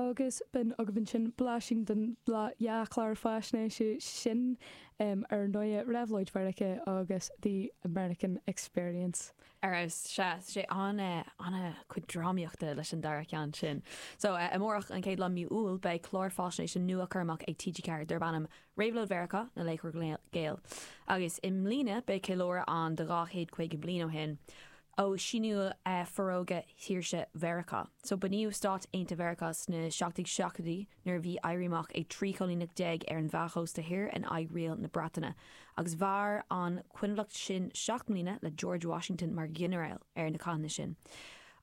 agus b'in agaibh ansin blaisín den dea-chlár faisnéise sin, ar ndóigh, Réabhlóid Mheiriceá nó The American Experience. Ar fheabhas, tá, tá sé, an-chuid drámaíochta leis an dara ceann sin. So, amárach, an chéad lá de mhí Iúil, beidh clár faisnéise nua curtha amach ag TG4 darb ainm Réabhlóid Mheiriceá, Na Laochra Gael. Agus i mbliana, beidh ceiliúradh ann de dhá chéad caoga bliain ó shin. ó shíniú Fhorógra Shaoirse Mheiriceá. So bunaíodh Stáit Aontaithe Mheiriceá sna seacht déag seachtóidí nuair a bhí Éirí Amach ag 13 chóilíneach ar an mheánchósta thoir in aghaidh riail na Breataine agus mhair an coinbhleacht sin seacht mbliana le George Washington mar ghinearáil ar na cathanna sin.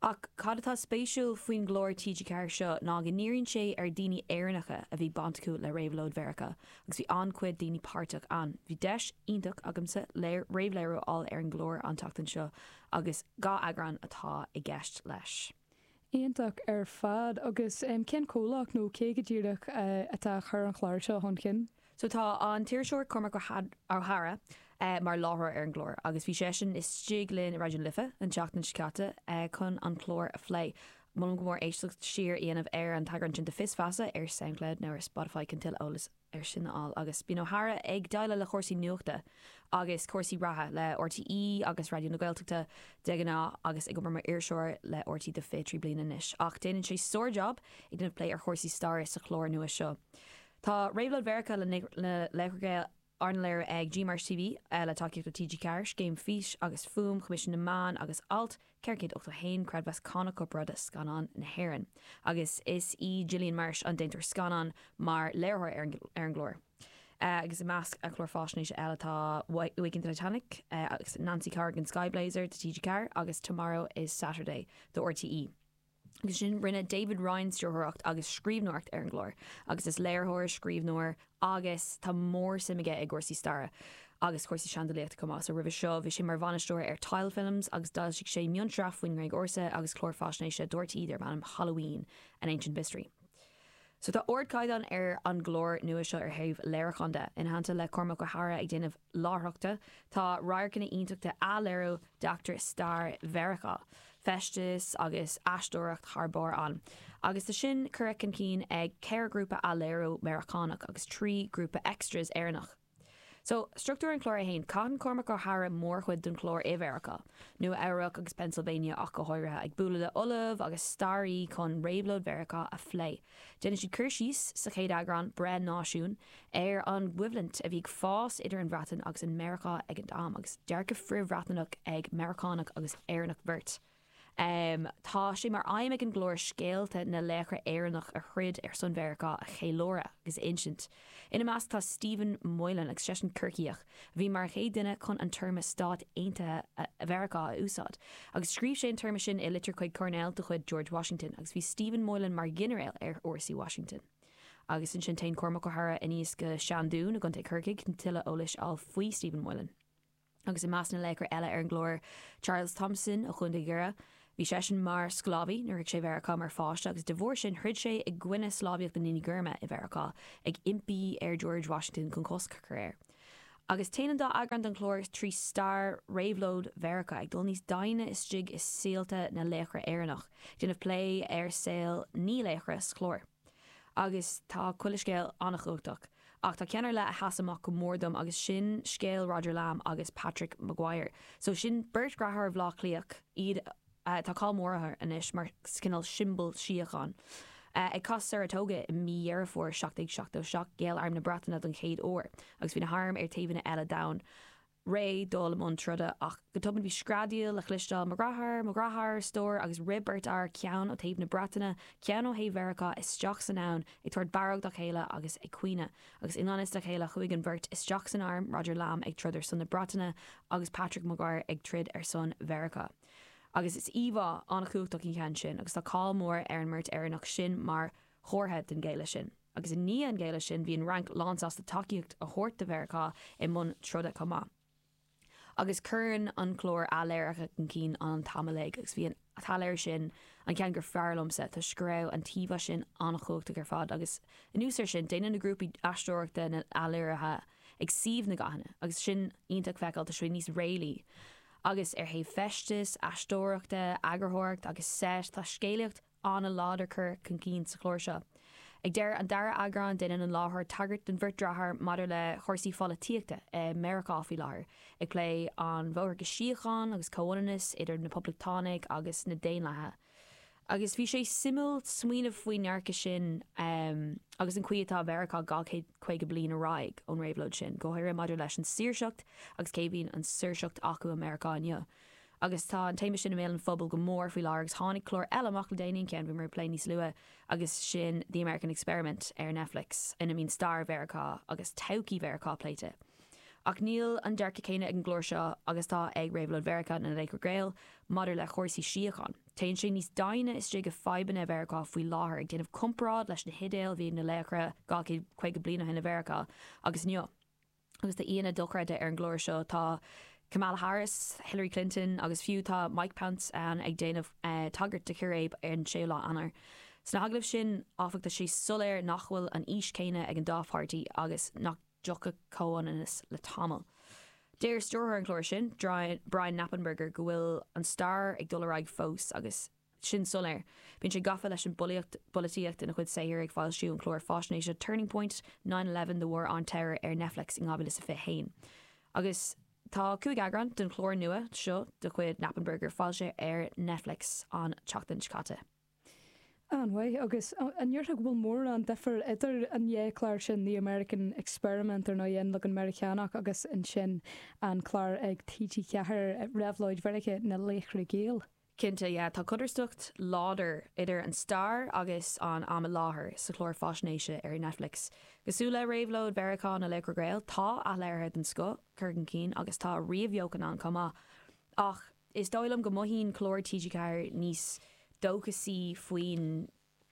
Ach cad atá spéisiúil faoin gclár TG4 seo ná go ndíríonn sé ar dhaoine Éireannacha a bhí baint acu le Réabhlóid Mheiriceá agus bhí an-chuid daoine páirteach ann. Bhí deis iontach agamsa réamhléiriú a fháil ar an gclár an tseachtain seo agus dhá eagrán atá i gceist leis. Iontach ar fad. Agus cén comhlacht nó cé go díreach atá ag cur an chláir seo chun cinn? So tá an t-iriseoir Cormac Ó hEadhra mar láithreoir ar an gclár agus bhí seisean istigh linn i Raidió na Life an tseachtain seo caite chun an clár a phlé. Molaim go mór éisteacht siar a dhéanamh ar an eagrán sin de Fios Feasa ar Soundcloud nó ar Spotify chun tuilleadh eolais ar sin a fháil agus bíonn Ó hEadhra ag déileáil le cúrsaí nuachta agus cúrsaí reatha le RTÉ agus Raidió na Gaeltachta de ghnáth agus ag obair mar iriseoir le RTÉ do 23 bliana anois ach déanann sé sár-jab ag déanamh plé ar chúrsaí staire sa chlár nua seo Tá Réabhlóid Mheiriceá Na Laochra Gael Arna léiriú ag GMarsh TV, le tacaíocht ó TG Ceathair, Scéim Fís agus Fuaim Choimisiún na Meán agus Alt 481, Creidmheas Cánach Corparáide Scannán na hÉireann, agus is í Gillian Marsh an déantóir scannán, mar léiritheoir ar an gclár. agus i measc clár faisnéise eile tá Waking the Titanic agus Nancy Corrigan Sky Blazer do TG4 agus Tomorrow is Saturday do RTÉ. Agus ansin rinne David Ryan stiúrthóireacht agus scríbhneoireacht ar an gclár agus is léiritheoir, scríbhneoir agus tá mór-suim aige i gcúrsaí staire agus cúrsaí seandálaíochta chomh maith. So roimhe seo bhí sé mar bhainisteoir ar Tile Films agus d'fhoilsigh sé mionsraith faoin nGréig Ársa agus clár faisnéise do RTÉ darb ainm Halloween, An Ancient Mystery. So tá ardchaighdeán ar an gclár nua seo ar thaobh léiriúcháin de. Ina theannta le Cormac Ó hEadhra ag déanamh láithreachta, tá radharcanna iontacha athléiriú d'eachtraí stair Mheiriceá, feisteas agus aisteoireacht thar barr ann. Agus tá sin curtha chun cinn ag ceithre ghrúpa athléiriú Meiriceánach agus trí ghrúpa extras Éireannach. So, struchtúr an chláir é féin. Caitheann Cormac Ó hEadhra mórchuid den chlár i Mheiriceá, Nua Eabhrac agus Pennsylvania ach go háirithe, ag bualadh le ollaimh agus staraithe chun réabhlóid Mheiriceá a phlé. Déanann siad cur síos, sa chéad eagrán, Breith Náisiún, ar an gcoimhlint a bhí ag fás idir an Bhreatain agus an Meiriceá ag an am, agus dearcadh frith-Bhreatnach ag Meiriceánach agus Éireannach beirt. Tá sé mar aidhm ag an gclár scéalta na laochra Éireannach a throid ar son Mheiriceá a cheiliúradh agus a insint. Ina measc tá Stephen Moylan agus seisean Corcaíoch a bhí mar an chéad duine chun an téarma Stáit Aontaithe Mheiriceá a úsáid agus scríobh sé an téarma sin i litir chuig Coirnéal de chuid George Washington agus bhí Stephen Moylan mar ghinearéal ar fhórsaí Washington. Agus ansin téann Cormac Ó hEadhra aníos go dtí an Seandún i gContae Corcaigh chun tuilleadh eolais a fháil faoi Stephen Moylan. agus i measc na laochra eile ar an gclár, Charles Thomson ó Chúndaí Dhoire. Bhí seisean mar sclábhaí nuair a shroich sé Mheiriceá mar pháiste agus de bharr sin throid sé i gcoinne sclábhaíocht na ndaoine gorma i Mheiriceá, ag impí ar George Washington chun cosc a chur air. Agus téann an dá eagrán den chlár trí stair réabhlóid Mheiriceá, ag dul níos doimhne istigh i saolta na laochra Éireannach, ag déanamh plé ar saol naoi laochra sa chlár. Agus tá chuile scéal an-chumhachtach. Ach tá ceann ar leith a sheas amach go mór dom agus sin scéal Roger Lamb agus Patrick Maguire. So sin beirt dreatháir Bhleá Cliath, iad atá cáil mór orthu anois mar chineál siombal síochán. Ag cath Saratoga i mí Dheireadh Fómhair 1777 ghéill arm na Breataine don chéad uair agus bhí na hairm ar taobhanna eile d'abhainn. réidh dul i mbun troda, ach go tobann bhí screadaíl le chloisteáil, 'Mo dhreatháir! Mo dhreatháir! a stór, agus rith beirt fhear, ceann ó thaobh na Breataine, ceann ó thaobh Mheiriceá, isteach san abhainn, ag tabhairt barróg dá chéile agus ag caoineadh. Agus i ngan fhios dá chéile chuaigh an bheirt isteach san arm, Roger Lamb ag troid ar son na Breataine agus Patrick Maguire ag troid ar son Mheiriceá. Agus is íomhá an-chumhachtach í an ceann sin agus tá cáil mhór ar an mbeirt Éireannach sin mar chomhartha den ghéilleadh sin. Agus i ndiaidh an ghéilleadh sin, bhí an Fhrainc lánsásta tacaíocht a thabhairt do Mheiriceá i mbun troda chomh maith. Agus cuireann an clár athléirithe chun cinn an tsamhlaíocht, agus bhí an t-athléiriú sin an ceann gur fearr liomsa, toisc go raibh an íomhá sin an-chumhachtach ar fad, agus anuas air sin, déanann na grúpaí aisteoireachta na hathléirithe ag suíomh na gcathanna, agus sin iontach feiceáil, toisc go bhfuil níos réalaí. Agus ar thaobh feistis, aisteoireachta, eagarthóireacht agus seit, tá scéalaíocht, an-láidir curtha chun cinn sa chlár seo. Ag deireadh an dara eagráin déanann an láithreoir tagairt don bheirt dreatháir maidir le chúrsaí pholaitíochta i Meiriceá faoi láthair, ag plé an bhóthar go síocháin agus comhionannas idir na Poblachtánaigh agus na Daonlathaithe. Agus bhí sé suimiúil smaoineamh faoin ndearcadh sin agus an chaoi atá Mheiriceá dhá chéad caoga bliain ar aghaidh ón réabhlóid sin, go háirithe maidir leis an saoirseacht agus cé a bhíonn an saoirseacht acu i Meiriceá inniu. agus tá an téama sin i mbéal an phobail go mór faoi láthair agus tháinig clár eile amach le déanaí, an ceann a bhí mé ag plé níos luaithe, agus sin The American Experiment ar Netflix ina mbíonn stair Mheiriceá agus todhchaí Mheiriceá pléite. Ach níl an dearcadh céanna ag an gclár seo agus atá ag Réabhlóid Mheiriceá na Laochra Gael maidir le cúrsaí síocháin. Téann sé níos doimhne istigh i fadhbanna Mheiriceá faoi láthair, ag déanamh comparáid leis na hidéil a bhí ag na laochra dhá chéad caoga bliain ó shin i Mheiriceá agus inniu. Agus tá aíonna dochreidte ar an gclár seo, tá Kamala Harris, Hillary Clinton agus fiú tá Mike Pence ann ag déanamh tagairt do chiréib ar an 6ú lá Eanáir. Sna hagallaimh sin, áfach, tá sé soiléir nach bhfuil an fhís chéanna ag an dá pháirtí agus nach dtiocfaidh comhaontas le tamall. Deir stiúrthóir an chláir sin, Brian Knappenberger go bhfuil an stair ag dul ar aghaidh fós agus, sin soiléir. Bíonn sé gafa leis an bpolaíocht, bpolaitíocht ina chuid saothar, ag foilsiú an chláir faisnéise Turning Point, Nine Eleven and the War on Terror ar Netflix in 2021. Agus tá cúig eagrán den chlár nua seo de chuid Knappenberger foilsithe ar Netflix an tseachtain seo caite. An-mhaith. Agus an ndéarfá go bhfuil mórán difir idir an dhá chlár sin, The American Experiment ar ndóigh, An Leagan Meiriceánach agus ansin an clár ag TG4, Réabhlóid Mheiriceá, Na Laochra Gael? Cinnte, yeah, tá codarsnacht láidir idir an stair agus an am i láthair sa chlár faisnéise ar Netflix. Cosúil le réabhlóid Mheiriceá na Laochra Gael, tá athléirithe den scoth curtha chun cinn agus tá ríomhbheochan ann chomh maith. Ach is dóigh liom go mothaíonn clár TG4 níos dóchasaí faoin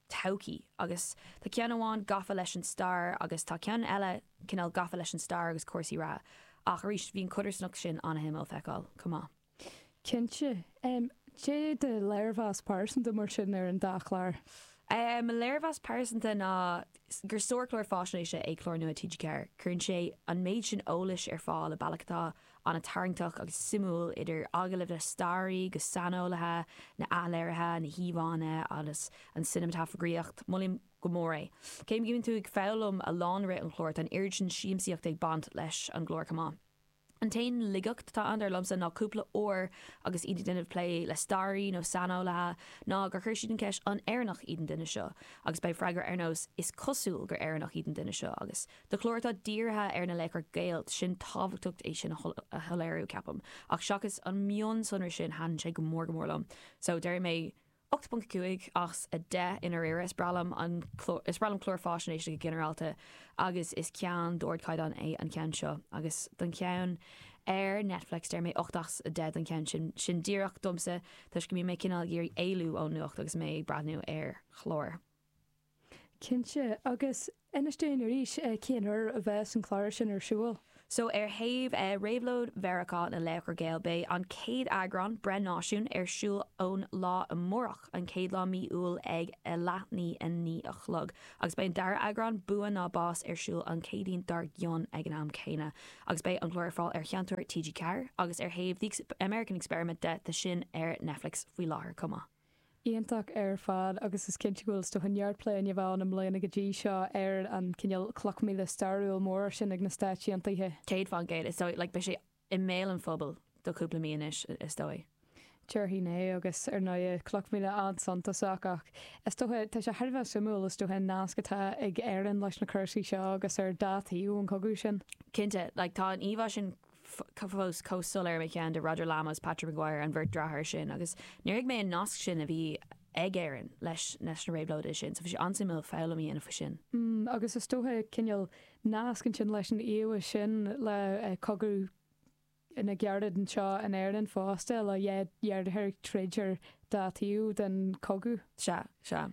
todhchaí agus tá ceann amháin gafa leis an stair agus tá ceann eile cineál gafa leis an stair agus cúrsaí reatha ach arís bhí an chodarsnacht sin an-shuimiúil feiceáil chomh maith. Cinnte. Cad é do léirmheas pearsanta mar sin ar an dá chlár? Mo léirmheas pearsanta ná gur sárchlár faisnéise é clár nua TG4. Cuireann sé an méid sin eolais ar fáil i mbealach atá an-tarraingteach agus suimiúil, idir agallaimh le staraithe agus saineolaithe, na athléirithe, na híomhánna agus an cineamatagraíocht. Molaim go mór é. Cé go mbíonn tú ag foghlaim a lán i rith an chláir, tá an oiread sin siamsaíochta ag baint leis an gclár chomh maith. An t-aon laigeacht atá ann, dar liomsa, ná cúpla uair agus iad ag déanamh plé le staraithe nó saineolaithe ná gur chuir siad an cheist 'An Éireannach iad an duine seo? agus beidh freagra ar nós 'Is cosúil gur Éireannach iad an duine seo' agus do chlár atá dírithe ar na laochra Gael, sin tábhachtach é sin a shoiléiriú, ceapaim, ach seachas an mionsonra sin thaitin sé go mór go mór liom. So, déarfaidh mé. 8.5 as 10 i ndáiríre, is breá liom an clár, is breá liom cláir faisnéise go ginearálta agus is ceann d'ardchaighdeán é an ceann seo. Agus don cheann ar Netflix deir mé 8 as 10 don cheann sin, sin díreach domsa toisc go mbíonn mé cineál ag iarraidh éalú ón nuacht agus mé ag breathnú ar chlár. Cinnte. Agus inis dúinn arís cén uair a bheas an clár sin ar siúl. So, ar thaobh Réabhlóid Mheiriceá na Laochra Gael, beidh an chéad eagrán, Breith Náisiún, ar siúl ann amárach, an chéad lá mí Iúil ag a leath i ndiaidh a naoi a chlog. Agus beidh an dara eagrán, Bua nó Bás, ar siúl an Chéadaoin dár gcionn ag an am céanna. Agus beidh an clár ar fáil ar Sheinnteoir TG4. Agus ar thaobh The American Experiment de, tá sin ar Netflix faoi láthair chomh maith. Iontach ar fad agus is cinnte go bhfuil is dóiche neart plé ann i mbliana go dtí seo ar an cineál cloch mhíle stairiúil mhór sin ag na Stáit Aontaithe. Céad fán gcéad, is dóigh. Like, beidh sé i mbéal an phobail do cúpla mí anois, is dóigh. Déarfainn é agus ar ndóigh, cloch mhíle an-suntasach ach is dócha, tá sé thar a bheith suimiúil, is dócha, an nasc atá ag Éirinn leis na cúrsaí seo agus ar dá thaobh an chogaidh sin. Cinnte, like, tá an íomhá sin fós chomh soiléir i mo cheann de Roger Lamas, Patrick Maguire, an bheirt deartháir sin, agus níor thuig mé an nasc sin a bhí ag Éirinn leis na réabhlóidithe sin, so bhí sé an-suimiúil foghlaim a dhéanamh faoi sin. M, Agus is dócha cineál nasc ansin leis an íomhá sin le cogadh na gcarad anseo in Éirinn fosta, le deartháir ag troid ar dá thaobh den chogadh. Sea, sea.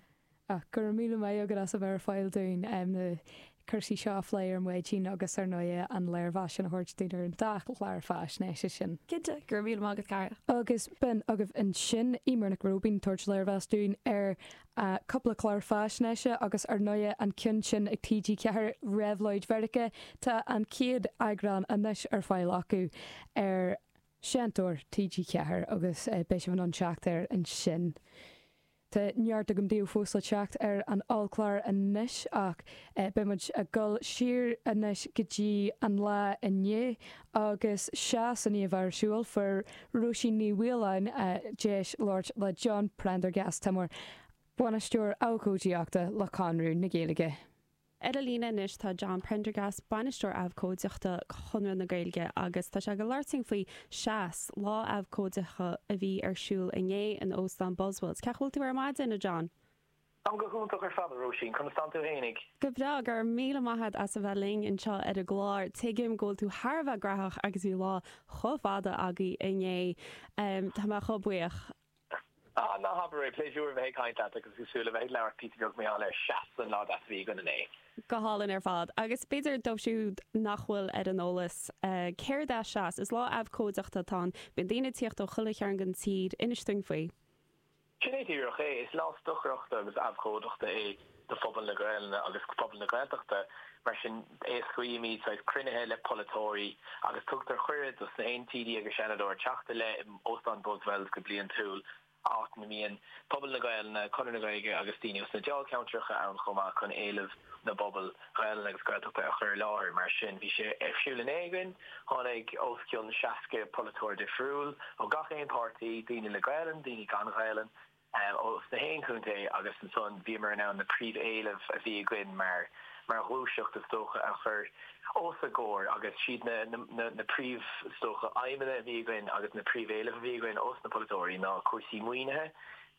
Ach go raibh míle maith agat as a bheith ar fáil dúinn na cúrsaí seo a phlé ar maidin agus ar ndóigh an léirmheas sin a thabhairt dúinn ar an dá chlár faisnéise sin. Cinnte, go raibh míle maith agat cara. Agus b'in agaibh ansin Eimear Nic Róibín ag tabhairt léirmheas dúinn ar cúpla clár faisnéise agus ar ndóigh an ceann sin ag TG4, Réabhlóid Mheiriceá, tá an chéad eagrán anois ar fáil acu ar Sheinnteoir TG4 agus beidh sibh in ann teacht air ansin. Tá neart agam díobh fós le teacht ar an ollchlár anois ach beidh muid ag dul siar anois go dtí an lá inné agus Seas a bhí ar siúl fuair Róisín Ní Mhaoláin deis labhairt le John Prendergast, Bainisteoir Abhcóideachta le Conradh na Gaeilge. Ar an líne anois tá John Prendergast, Bainisteoir Abhcóideachta Chonradh na Gaeilge agus tá sé ag labhairt linn faoi Seas, lá abhcóideachta a bhí ar siúl inné in Óstán Buswells. Cén chaoi a bhfuil tú ar maidin, a John? Táim go hiontach ar fad, a Róisín. Conas tá tú fhéinig? Go breá, go raibh míle maith agat as a bheith linn anseo ar an gclár. Tuigim go bhfuil tú thar a bheith gnaitheach agus bhí lá chomh fada agaibh inné. Tá mé chomh buíoch. Ah, ná habair é! Pléisiúr a bheith ag caint leat agus ag súil le bheith ag labhairt píosa beag maidir le Seas, an lá deas a bhí againn inné! Go hálainn ar fad. Agus b'fhéidir dóibh siúd nach bhfuil ar an eolas céard é Seas, is lá abhcóideachta atá ann. Bíonn daoine ag tíocht ó chuile chearn den tír. Inis dúinn faoi. Sin é díreach é. Is lá stocaireachta agus abhcóideachta é. do phobal na Gaelainne agus phobal na Gaeltachta. Mar sin, éascaímid saghas cruinnithe le polaiteoirí agus tugtar cuireadh dos na haon TD agus Seanadóir teacht i leith in Óstán Buswells go bliantúil, áit ina mbíonn pobal na Gaelainne, Conradh na Gaeilge agus daoine os na dáilcheantracha ann chomh maith chun éilimh na bpobal Ghaelainne agus Gaeltachta a chur i láthair. Mar sin, bhí sé ar siúl inné againn. Tháinig os cionn 60 polaiteoir difriúil, ó gach aon páirtí, daoine le Gaelainn, daoine gan Ghaelainn, ó sna haon chontae agus ansan bhíomar in ann na príomh-éilimh a bhí againn mar mar ghluaiseacht is dócha a chur os a gcomhair agus siad na príomh is dócha aidhmeanna a bhí againn agus na príomh-éilimh a bhí againn ós na polaiteoirí ná cúrsaí maoinithe,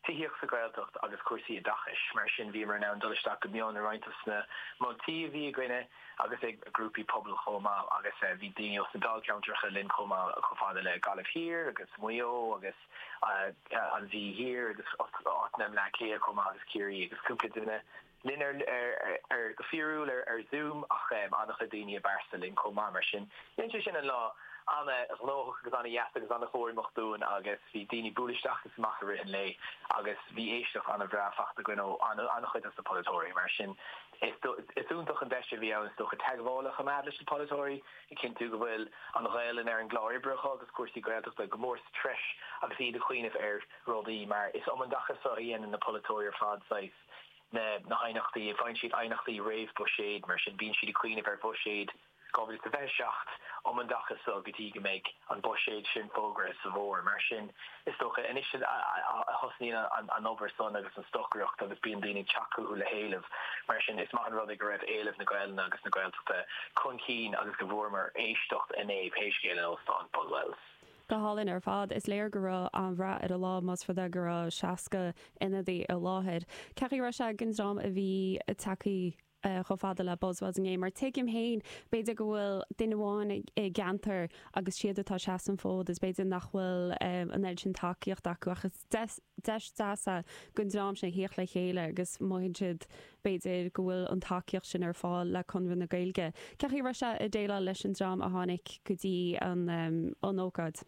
tithíocht sa Ghaeltacht agus cúrsaí oideachais. Mar sin bhíomar in ann dul isteach go mion i roinnt dos na moltaí a bhí againne agus ag grúpaí pobail chomh maith agus bhí daoine ós na Dáilcheantracha linn chomh maith chomh fada le Gaillimh Thiar agus Maigh Eo agus an Mhí Thoir agus áiteanna i mBleá Cliath chomh maith agus Ciarraí agus cúpla duine linn ar, go fíorúil ar Zoom ach an-chuid daoine i bpearsa linn chomh maith. Mar sin, dhein sé sin an lá an-ghnóthach agus an-dheas agus an-chaithréimeach dúinn agus bhí daoine ag bualadh isteach agus amach i rith an lae agus bhí éisteacht an-bhreá faighte againn ó an-chuid dos na polaiteoirí. Mar sin, is iontach an deis a bhí ann is dócha teagmháil a choimeád leis na polaiteoirí, a chinntiú go bhfuil an Ghaelainn ar an gclár oibre acu agus cúrsaí Gaeltachta go mór sa treis agus iad ag cuimhneamh ar rudaí mar is um an dtaca seo a dhéanann na polaiteoirí ar fad saghas na haighneachtaí, faigheann siad aighneachtaí réamh-Bhuiséid, mar sin bíonn siad ag cuimhneamh ar Bhuiséad 2027 um an dtaca seo go dtí go mbeidh an Buiséad sin fógartha sa bhfómhar. Mar sin. Is dócha anois a thosnaíonn an obair san agus an stocaireacht agus bíonn daoine ag teacht chucu le héileamh. Mar sin, is maith an rud é go raibh éileamh na Gaelainne agus na Gaeltachta chun cinn agus go bhfuaireamar éisteacht inné pé scéal é in Óstán Buswells. Go hálainn ar fad. Is léir go raibh an-rath ar an lá más rud é go raibh 60 ionadaí i láthair. Cén chaoi a raibh sé don dream a bhí ag teacht eh, chomh fada le Buswells inné, mar tuigim féin, b'fhéidir go bhfuil duine amháin i gceantar agus siad atá ag seasamh an fód is b'fhéidir nach bhfuil eh, an oiread sin tacaíocht acu ach is deis deas é don dream sin a thíocht le chéile agus mothaíonn siad b'fhéidir go bhfuil an tacaíocht sin ar fáil le Conradh na Gaeilge. Cén chaoi a raibh sé ag déileáil leis an dream a tháinig go dtí an, an ócáid?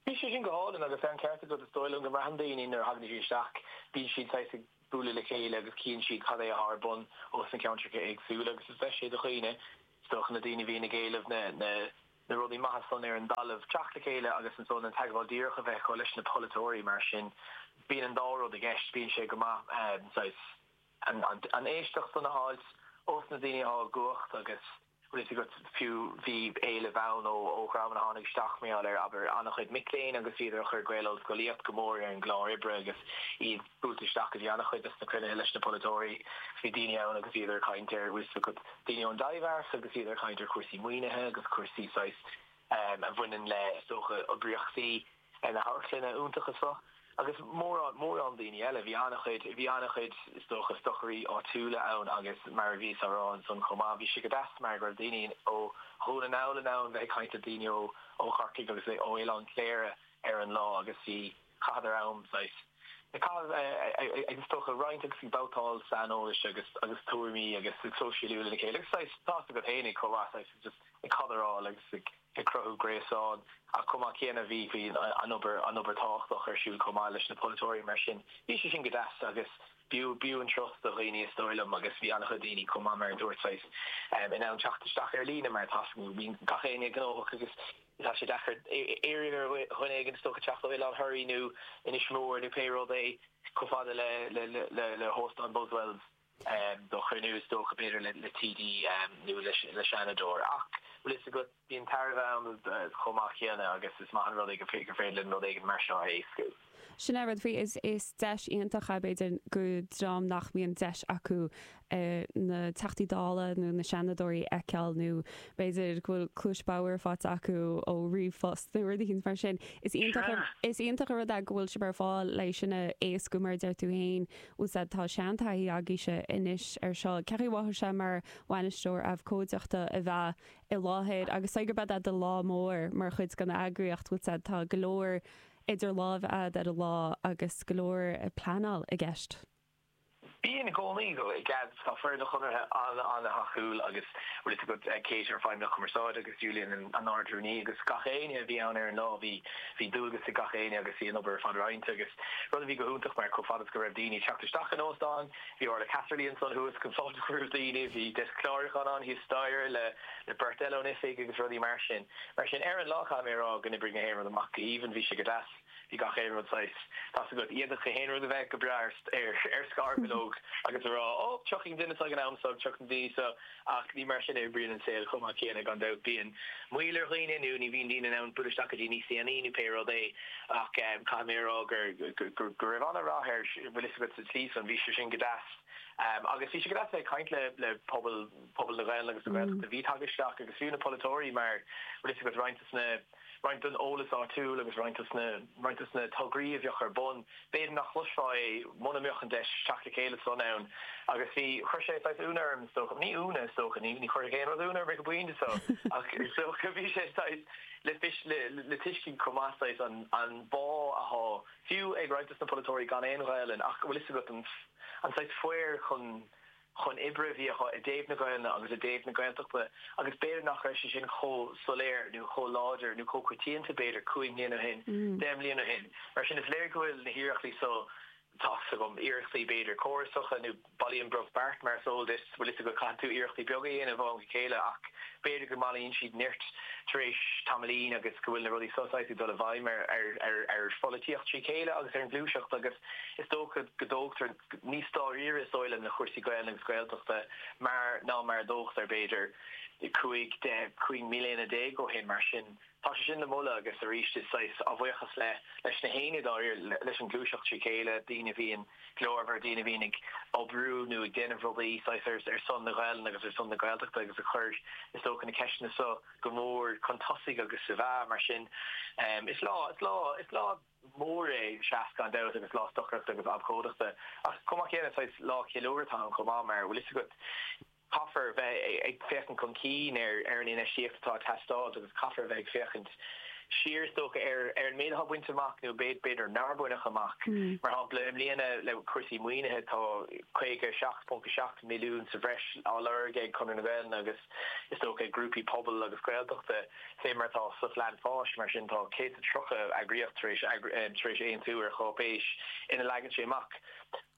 Bhí sé sin go hálainn agus tá an ceart agat, is dóigh liom go mbraitheann daoine nuair a thagann siad isteach, bíonn siad saghas ag bualadh le chéile agus cíonn siad cad é atá ar bun ós na ceantracha éagsúla agus is deis é do dhaoine, is dócha, na daoine a bhíonn ag éileamh na na rudaí maithe san ar an dtalamh, teacht le chéile agus ansan an teagmháil díreach a bheith acu leis na polaiteoirí mar sin bíonn an dá rud i gceist, bíonn sé go maith saghas. an éisteacht san a fháilt, ós na daoine atá i gcumhacht agus bhfuil fhios agat fiú, bhí éileamh ann ó dhreamanna a tháinig isteach mar gheall ar, abair, an-chuid mic léinn agus bhíodar ag cur Gael-Ollscolaíocht go mór ar an gclár oibre agus iad buailte isteach go dtí an-chuid dos na cruinnithe leis na polaiteoirí. Bhí daoine ann agus bhíodar ag caint ar, bhfuil fhios agat, daoine ón dTaibhdhearc agus bhíodar ag caint ar chúrsaí maoinithe agus cúrsaí saghas a bhaineann le, is dócha, oibríochtaí. ar na hamharclanna iontacha seo agus mórán, mórán daoine eile. Bhí an-chuid, bhí an-chuid, is dócha, stocairí áitiúla ann agus mar a bhíos á rá ansan chomh maith, bhí sé go deas mar go raibh daoine ó Dhún na nGall in ann bheith ag caint le daoine ó, ó Chorcaigh agus le, ó Oileán Chléire ar an lá agus bhí, chaitheadar am, saghas, ag caitheamh, ag, is dócha, roinnt agus ag babhtáil saineolais agus, agus tuairimí agus ag sóisialú lena chéile agus saghas, tá's agat fhéinig chomh maith, saghas, just ag cadráil agus ag. ag cruthú gréasán. Ach chomh maith céanna, bhí an obair tábhachtach ar siúl chomh maith leis na polaiteoirí, mar sin bhí sé sin go deas agus b'fhiú an turas do dhaoine is dóigh liom agus bhí an-chuid daoine chomh maith mar a dúirt saghas in ann teacht isteach ar líne mar tá's agat bíonn gach éinne gnóthach agus tá sé deacair iarraidh ar dhuine éigin is dócha teacht ó Oileán Thoraí nó Inis Mór nó pé rud é chomh fada le hóstán Buswells. do chruinniú, is dócha, b'fhéidir le TD nó le Seanadóir. Ach, bhfuil fhios agat, bíonn tairbhe ann chomh maith céanna agus is maith an rud é gur féidir linn rud éigin mar seo a éascú. Sin é an rud faoi, is deis iontach é b'fhéidir go dream nach mbíonn deis acu na Teachtaí Dála nó na Seanadóirí a fheiceáil nó b'fhéidir go bhfuil cluais bhodhar faighte acu ó ríomhphost nó rud éigin mar sin. Is iontach an rud é go bhfuil sibh ar fáil le sin a éascú mar a deir tú féin. Bhfuil fhios agat tá seantaithí agaibhse anois ar seo, cén chaoi a mhothaigh sé mar bhainisteoir abhcóideachta a bheith i láthair agus gurb é do chéad lá mór mar chuid den eagraíocht bhfuil fhios agat tá go leor idir láimh agat ar an lá agus go leor pleanáil i gceist. Bíonn i gcónaí, i gceist Tá foireann an Chonartha ana-thacúil agus bhfuil fhios agat Kate ár bhFeidhmeannach Cumarsáide agus Julian an Ardrúnaí agus gach éinne a bhí ann ar an lá bhí bhí dualgas ag gach éinne agus bhí an obair ar fad roinnte agus rud a bhí go hiontach mar chomh fada is go raibh daoine teacht isteach an óstán bhí Orla Casserly ansan thuas chun fáilte a chur roimh daoine bhí deisc clárúcháin ann thíos staighre le le beirt eile ón oifig agus rudaí mar sin mar sin ar an lá caithfidh mé a rá gur oibrigh gach aon rud amach go haoibhinn bhí sé go deas. Bhí gach aon rud saghas. Tá's agat, d'fhéadfadh aon rud a bheith go breá ar scarbhileog agus a rá, Ó, tiocfaidh duine seo ag an am seo, tiocfaidh na daoine seo. Ach ní mar sin a oibríonn an saol chomh maith céanna, gan dabht. Bíonn moill ar dhaoine nó ní bhíonn daoine in ann buail isteach go dtí níos déanaí nó pé rud é. Ach caithfidh mé a rá go raibh an-rath ar, bhfuil fhios agat, sa tslí san, bhí sé sin go deas. Agus bhí sé go deas a bheith ag caint le pobal na Gaeilge agus na Gaeltachta. Bhí, ag teacht isteach agus fiú na polaiteoirí mar, bhfuil fhios agat, roinnt de na. roinnt den eolas áitiúil agus roinnt de na tograí a bheadh ar bun, b'fhéidir nach gcloisfeá é mura mbeadh an deis teacht le chéile san ann. Agus bhí, chuir sé saghas ionadh orm is dócha, ní ionadh is dócha, ní chuirfeadh aon rud ionadh orm ag an bpointe seo, ach is dócha, bhí sé saghas le tuiscint chomh maith saghas an bá athá fiú ag roinnt de na polaiteoirí gan aon Ghaolainn ach go bhfuil fhios agat an saghas faobhar chun chun oibre a bhí acu i dtaobh na Gaelainne agus i dtaobh na Gaeltachta agus b'fhéidir nach raibh sé sin chomh soiléir nó chomh láidir nó chomh coitianta b'fhéidir cúig mbliana ó shin, deich mbliana ó shin. Mar sin, is léir go bhfuil na hiarrachtaí so, tá a fhios agam, iarrachtaí b'fhéidir córasacha nó bailíonn brobh beart mar is eol duit, bhfuil a fhios agat, caitheann tú iarrachtaí beaga a dhéanamh ó am go chéile ach b'fhéidir go mbailíonn siad neart tar éis tamaillín agus go bhfuil na rudaí so saghas ag dul i bhfeidhm ar pholaitíocht trí chéile agus ar an ghluaiseacht agus is dócha go dtógtar Níos dáiríre is dóigh liom le cúrsaí Gaeilge agus Gaeltachta mar ná mar a dtógtaí, b'fhéidir, cúig, deich, cúig mbliana déag ó shin. Mar sin, tá sé sin le moladh agus arís is saghas, á bhuíochas le, leis na haoinne, dáiríre, leis an ghluaiseacht trí chéile, daoine a bhíonn glórmhar, daoine a bhíonn ag oibriú nó ag déanamh rudaí, saghas, ar son na Gaelainne agus ar son na Gaeltachta agus ag cur, is dócha, na ceisteanna seo go mór chun tosaigh agus ab ea. Mar sin, is lá, is lá, is lá. mór é, SEAS gan dabht, agus lá stocaireachta agus abhcóideachta. Ach chomh maith céanna, saghas lá ceiliúrtha atá ann chomh maith, mar, bhfuil fhios agat, caithfear bheith ag féachaint chun cinn ar an infheistíocht atá ag teastáilt agus caithfear bheith ag féachaint siar, is dócha, ar an méid atá bainte amach nó b'fhéidir nár baineadh amach. Mar shampla, i mbliana le cúrsaí maoinithe, tá 57.7 milliún sa bhreis á lorg ag Conradh na Gaelainne agus, is dócha, ag grúpaí pobail agus Gaeltachta. Fé mar atá sa Phlean Fáis, mar sin, tá 130 eagraíocht tar éis aontú ar cháipéis ina leagann sé amach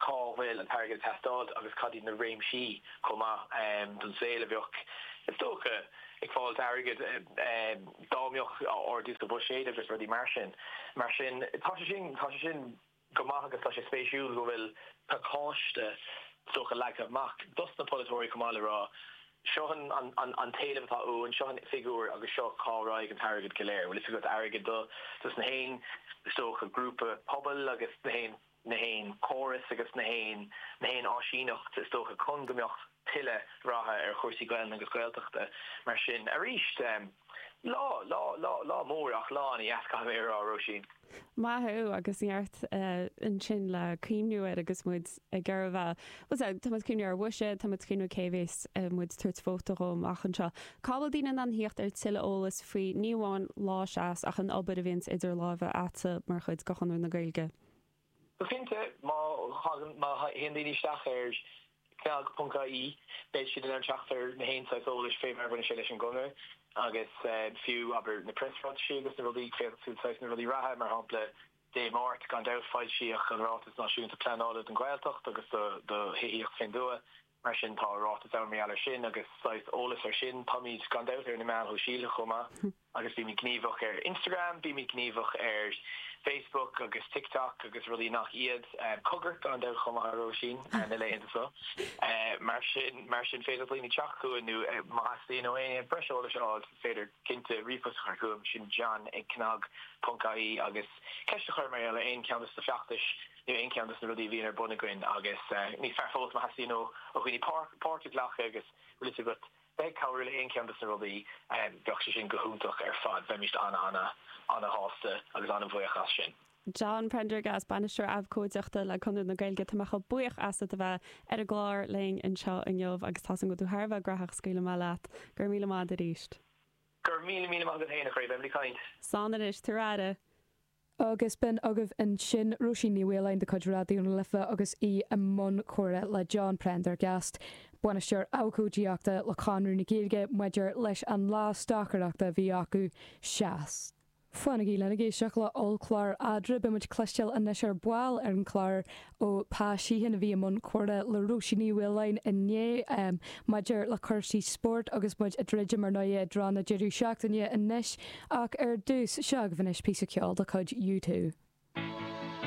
cá bhfuil an t-airgead ag teastáilt agus cad iad na réimsí chomh maith den saol a bheadh, is dócha, ag fáilt airgead dá mbeadh ardú sa bhuiséad agus rudaí mar sin. Mar sin, tá sé sin. go maith agus tá sé spéisiúil go bhfuil pacáiste, is dócha, leagtha amach dos na polaiteoirí chomh maith le rá, seo an t-éileamh atá uainn, seo an figiúr agus seo cá raghaidh an t-airgead go léir. Bhfuil fhios agat, airgead dos na haon, is dócha, grúpa pobail agus na haon chóras agus na haon áisíneacht, is dócha, chun go mbeadh, tuilleadh ratha ar chúrsaí Gaelainne agus Gaeltachta mar sin. Arís, lá, lá, lá, lá mór ach lá ana dheas caithfidh mé a rá, Róisín. Maith thú agus neart ansin le cuimhniú air agus muid ag gabháil. Bhuel sea, tá muid ag cuimhniú air. Mhuise, tá muid ag cuimhniú cé bheas muid ag tabhairt vóta dhó amach anseo. Cá bhfuil daoine in ann thíocht ar tuilleadh eolais faoi ní amháin Lá SEAS ach an obair a bhíonns idir láimhe a'tsa mar chuid de Chonradh na Gaeilge? Go cinnte, má théann daoine isteach ar cnag.ie, beidh siad in ann teacht ar na haon saghas eolais fé mar a bhaineann sé leis an gConradh, agus fiú, abair, na preasráitisí agus na rudaí, féachfaidh tú saghas na rudaí reatha, mar shampla, Dé Máirt, gan dabht, foilsíodh an Ráiteas Náisiúnta Pleanála don Ghaeltacht agus do Thithíocht fén dtuath, Mar sin, tá ráiteas ann mar gheall air sin agus saghas eolas air sin. Táimid, gan dabht, ar na meáin shóisialta chomh maith agus bímid gníomhach ar Instagram, bímid gníomhach ar Facebook agus TikTok agus rudaí nach iad. Cogar gan dabht chomh maith, a Róisín, na laethanta seo. Mar sin, mar sin, féidir le daoine teacht chugainn nó má theastaíonn ó éinne breis eolais a fháil, is féidir cinnte ríomhphost a chur chugam, sin John ag cnag ponc IE agus ceist a chur mar gheall ar aon cheann dos na feachtais Nó aon cheann dos na rudaí a bhíonn ar bun againn agus níos fearr fós má theastaíonn ó dhaoine páirt a ghlacadh agus bhfuil fhios agat bheith ag cabhrú le haon cheann dos na rudaí, bheadh sé sin go hiontach ar fad. Bheimíst ana ana ana shásta agus ana bhuíoch as sin. John Prendergast, Bainisteoir Abhcóideachta le Conradh na Gaeilge, tá mé chomh buíoch asat a bheith ar an gclár linn anseo inniu agus tá a fhios a'm go bhfuil tú thar a bheith gnóthach scaoilfidh mé leat. Go raibh míle maith a'd arís. Go raibh míle míle maith agat féin a chroí, beimid ag caint. Slán anois, tabhair aire! Agus b'in agaibh ansin Róisín Ní Mhaoláin de chuid Raidió na Life agus í i mbun comhrá le John Prendergast, Bainisteoir Abhcóideachta le Conradh na Gaeilge maidir leis an lá stocaireachta a bhí acu. Seas. Fanaigí linn ag éisteacht le hollchlár Eadra, beidh muid ag cloisteáil anois ar ball ar an gclár ó Pa Sheehan a bhí i mbun comhrá le Róisín Ní Mhaoláin inné maidir le cúrsaí spóirt agus muid ag druidim ar nó i dtreo na deireadh seachtaine anois ach ar dtús, seo agaibh anois píosa ceoil de chuid U2.